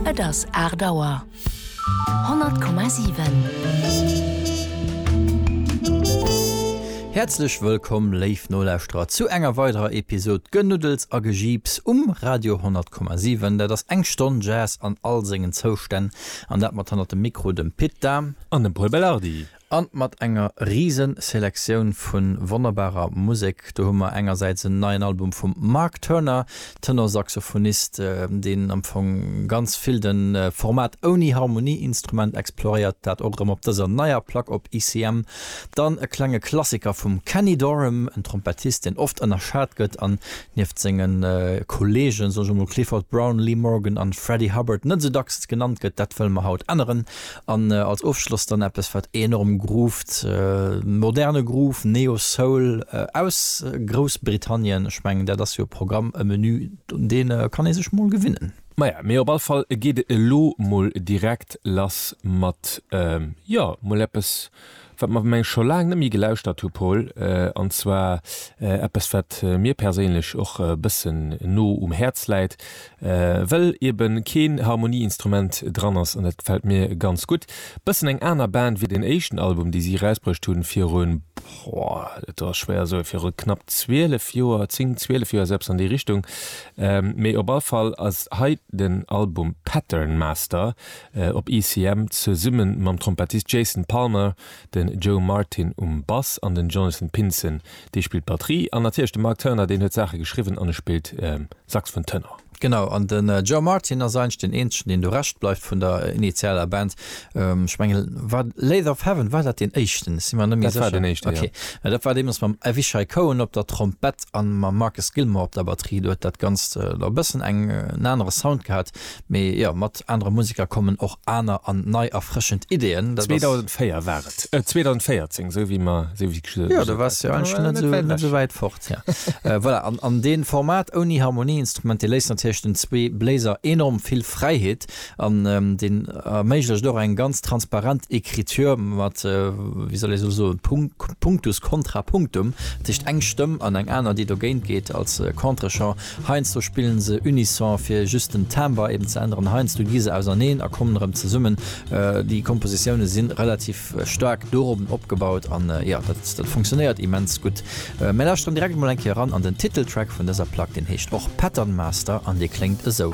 Et ass 8 Auer. 100,7. Häerzlech wëllkomm, léif Nolauschterer, zu enger weiderer Episod Genuddels a Gejiips um Radio 100,7. Dat ass eng Stonn Jazz an all sengen Zoustänn, an dat mat hannert dem Mikro dem Pit Dahm an dem Paul Belardi. An mat enger riesen Selektioun vun wonnerbarer Musek. Do hu mer engersäits en neien Album vum Mark Turner, Tenorsaxophonist, deen am Fong ganz vill den Format ouni Harmonieinstrument exploréiert, dat och erëm op dëser neier Plack op ICM. Dann e klenge Klassiker vum Kenny Dorham, en Trompettist, deen oft ënnerschat gëtt an nieft senge Kolleegen, soen ech emol, Clifford Brown, Lee Morgan an Freddie Hubbard, net esou dacks genannt gëtt. Dat wëlle mer haut änneren An als Ofschloss dann eppes wat enorm grooved, moderne Groove, Neo Soul aus Groussbritannien. Ech mengen dat ass jo e Programm, e Menü un dee kann ee sech mol gewinnen. Maja, mee op all Fall geet et elo mol direkt lass mat, jo, mol eppes Wat mer meng scho laang net méi gelauschtert hu Paul, an zwar eppes wat mir perséinlech och e bëssen no um Häerz läit, well ebe keen Harmonieinstrument dran ass an dat gefält mir ganz gutt. Bëssen eng aner Band wéi den éischten Album dee si erausbruecht hunn viru, boah, dat ass schwéier soen, viru knapp 12 Joer, 10, 12 Joer, sou eppes an déi Richtung. Mee op all Fall ass hei den Album Pattern Master. op ECM zesumme mam Trompettist Jason Palmer, de Joe Martin um Bass an den Jonathan Pinson, dee spillt d'Batterie, an natierlech de Mark Turner, deen huet d'Saache geschriwwen an e spillt Saxfon Tenor. Genau, an de Joe Martin ass eigentlech deen eenzegen, deen do Rescht bleift vun der initialer Band. Ech menge war Lathe of Heaven, war dat deen éischten? Ech si mer net méi sécher. Dat war deen éischten, jo. Okay, dat war deemools mam Avishai Cohen op der Trompett an mam Marcus Gilmore op der Batterie. Do huet dat Ganzt elo e bëssen en anere Sound gehat, Mee jo, mat anere Museker kommen och aner an nei erfrëschend Ideeën. Dat ass. 2004 war et, 2014, esou wéi mer, esou wéi ech gesot. Jo, du waars jo eigentlech net esou, net esou wäit fort, ja. Voilà, an, an dee Format ouni Harmonieinstrument, dee léisst natierlech den zwee Bléiser enorm vill Fräiheet an deen erméiglecht och eng ganz transparent Écriture mat, wéi soll ee soen, Punkt, Punctus contra punctum, dat heescht eng Stëmm an eng aner, déi dogéint geet als Contre-champ. Heiansdo spillen se unison fir just den Timbre eben ze änneren, heiansdo gi se auserneen a kommen erëm zesummen. Déi Kompositioune sinn relativ staark dorobn opgebaut an jo, dat funktionéiert immens gutt. Mir lauschteren direkt emol eng Kéier eran an den Titeltrack vun dëser Plack, deen heescht och Pattern Master an dee kléngt esou.